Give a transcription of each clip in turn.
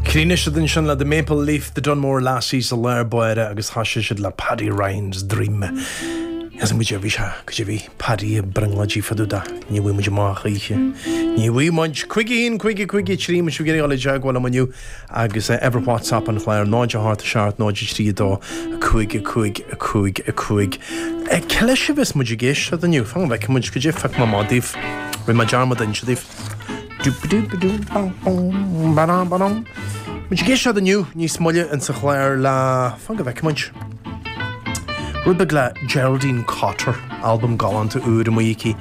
Chríochnaigh siad ansin le The Maple Leaf, The Dunmore Lassies sa lár báire agus thoisigh siad le Paddy Ryan's Dream. Measann muid gurbh é seo an rud a bhí Paddy ag brionglóidigh fá dtaobh dó. Ní bhfaighidh muid amach choíche. Ní bhfaighidh muid. Cúig a haon, a Cúig a Cúig a trí, má tá sibh ag iarraidh dul i dteagmháil liom inniu agus eh, uimhir WhatsApp an chláir 0 8 7 0 3 2 5 5 5 5. Eh, Cad leis a bheas muid ag éisteacht inniu? Fan go bhfeicfidh muid, go dtí go bhfeice mé daoibh. Rinne mé dearmad inse daoibh. Beidh muid ag éisteacht inniu níos moille ins an chlár le fan go bhfeice muid rud beag le Geraldine Cotter, albam galánta úr amuigh aici.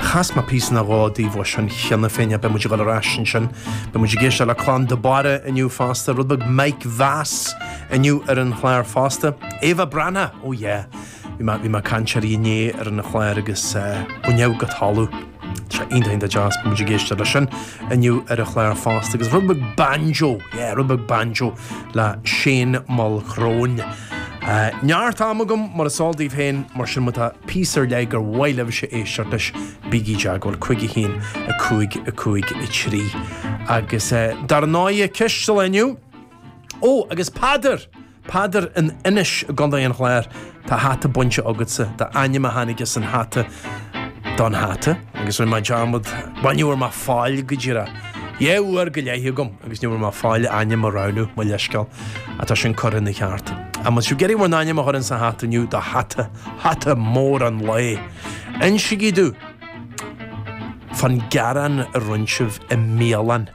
Chas mé píosa nó dhó daoibh as sin cheana féin beidh muid ag dul ar ais ansin. Beidh muid ag éisteacht le Clann de Barra inniu fosta, rud beag Mike Vass inniu ar an chlár fosta. Ava Branagh, oh yeah! Bhí mé ag caint uirthi inné ar an chlár agus baineadh go talamh. Tá sé iontach iontach deas, beidh muid ag éisteacht leis sin inniu ar an chlár fosta agus rud beag banjo, yeah, rud beag banjo le Shane Mulchrone. Neart ama agam mar is eol daoibh féin mar sin má tá píosa ar leith gur mhaith libhse a éisteacht leis, bígí i dteagmháil, 5 1 5 5 3. Agus dar ndóigh ceist an lae inniu, ó agus Peadar! Peadar, In Inis i gCondae an Chláir tá hata bainte agatsa, d'ainm a tháinig as an hata don hata. Agus rinne mé dearmad, bhuel ní bhfuair mé faill go díreach. Dhá uair go leith agam agus ní bhfuair mé faill ainm a roghnú, mo leithscéal, ach tá sin curtha ina cheart. An bhfuil sibh ag iarraidh bhur n-ainm a chur ins an hata inniu, don hata, hata mór an lae. Insigí domh fán ghearán a rinne sibh i mbialann.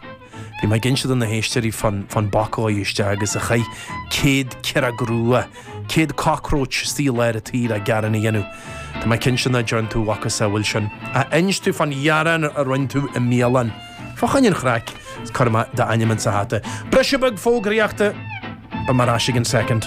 Bhí mé ag inse do na héisteoirí fán boc a ghaibh isteach agus a chaith céad ciaróg rua, céad cockroach saor le gearán a dhéanamh. Tá mé cinnte nach dtearn tú a mhacasamhail sin ach inis domh fán ghearán a rinne tú i mbialann. Fá choinne an chraic, cuirfidh mé d'ainm insa hata. Briseadh beag fógraíochta! Beidh mé ar ais i gcionn soicind.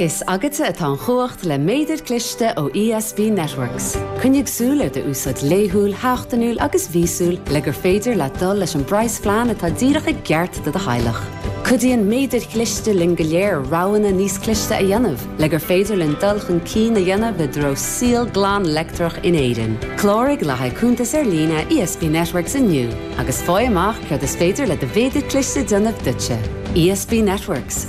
Is agatsa atá an chumhacht le méadair cliste ó ESB Networks. Coinnigh súil ar do úsáid laethúil, sheachtainiúil agus mhíosúil le gur féidir leat dul leis an bpraghas phlean atá díreach i gceart do do theaghlach. Cuidíonn méadair chliste linn go léir roghanna níos cliste a dhéanamh le gur féidir linn dul chun cinn a dhéanamh i dtreo saol glan leictreach in Éirinn. Cláraigh le haghaidh cuntas ar líne ESB Networks inniu agus fáigh amach céard is féidir le do mhéadair cliste déanamh duitse. ESB Networks.